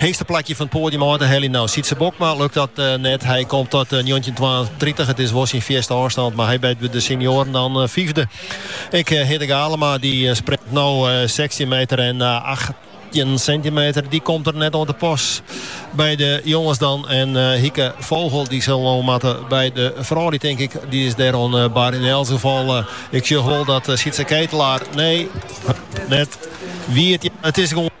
Heechste plakje fan it poadium ôf te heljen. No Sytse Bokma lukt dat net. Hy komt ta njoggentjin twaentritich. It is wol syn fierste ôfstân, mar hy wurdt by de senioaren dan fiifde. Ek Hidde Galama dy springt no sechstjin meter en acht achttjin sintimeter. Dy komt der net oan te pas by de jonges dan. En eh, Hike Vogel dy sil no moatte by de froulju tink ik, dy is dêr oan eh, bar. Yn elts gefal, eh, ik sjoch wol dat Sietse Ketelaar, nee, net wiet, it is gewoan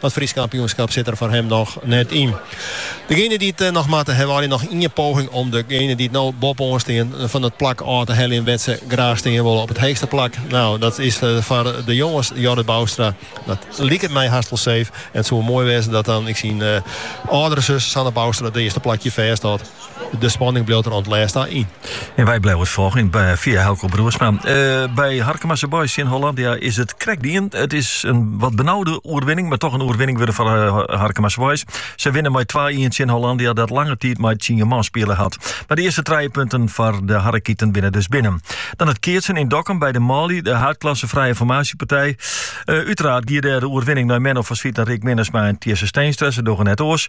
Dat Frysk kampioenskap sit der foar him noch net yn. Degene dy't noch moatte, hawwe allegear noch ien poging om degene dy't no boppe-oan stean fan it plak ôf te heljen wêr't se graach stean wolle, op it heechste plak. Nou, dat is foar de jonges Jorrit Boustra. Dat liket my hast wol safe en it soe wol moai wêze dat dan ek syn âldere sus Sanne Boustra it earste plakje fêsthâldt. De spanning bliuwt der oant it lêst ta yn. En wy bliuwe it folgjen fia Helco Broersma. By Harkemase Boys tsjin Hollandia is it krekt dien. It is in wat benaude oerwinning, mar toch in oerwinning wurde foar Harkemase Boys. Se winne mei twa-ien tsjin Hollandia dat lange tiid mei tsien man spile hat. Mar de earste trije punten foar de Harekieten binne dus binnen. Dan it keatsen yn Dokkum by de manlju, de haadklasse frije formaasjepartij. Uteraard gie dêr de oerwinning nei Menno van Zwieten, Rick Minnesma en Tjisse Steenstra. Se dogge net oars.